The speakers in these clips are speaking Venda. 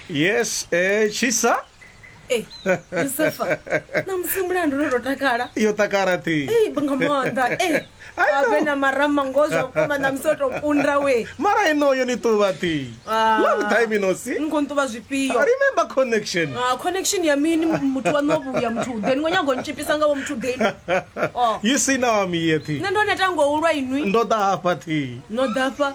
yes eh, chisa Eh, Yusufa, na musimu lanu lototakala. iyo takara ti Eh, nga maanḓa. Eh, I know. ave na marama ngoho zwa vhukuma na musi o tou kunda we. mara inoyo ni tuva ti Ah. long time ino si Ni khou nṱuvha zwifhio? remember connection Ah, connection ya mini muthu wa no vhuya muthu then ngo nyago nitshipisa nga vho muthu then oh you see now i'm here ti nṋe ndo neta ngo ulwa inwi ndo ḓa hafha ti no dafha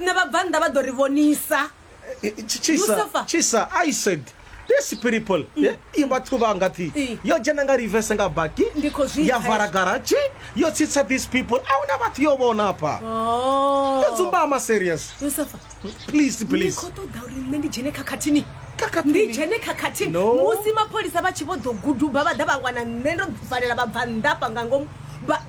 Nṋe vhabvannḓa vha ḓo ri vhonisa. Tshisa, tshisa, I said. These people eh, i vhathu vha nga thi yo dzhena nga reverse nga baki ya vala garaji yo tsitsa these people a huna vhathu yo vhona hafha oh. yo dzumbama serious please please khou ṱoḓa uri nṋe ndi dzhene khakhathini ndi dzhene khakhathini musi mapholisa vha tshi vho ḓo guduba vha ḓa vha wana nṋe ndo valela vhabvannḓa fha nga ngomu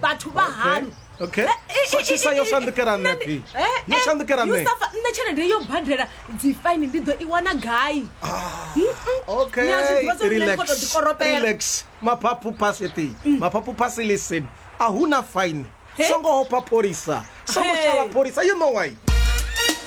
vhathu vha hanu okay khakhisa yo shandukela nṋe phi yo shandukela nṋe yusafa nṋe tshelede yo badela dzifaini ndi ḓo i wana gai okayrex maphaphu pasiti mm. maphaphu pasi listen a hu na faini songo hopha pholisa songo shala pholisa you know why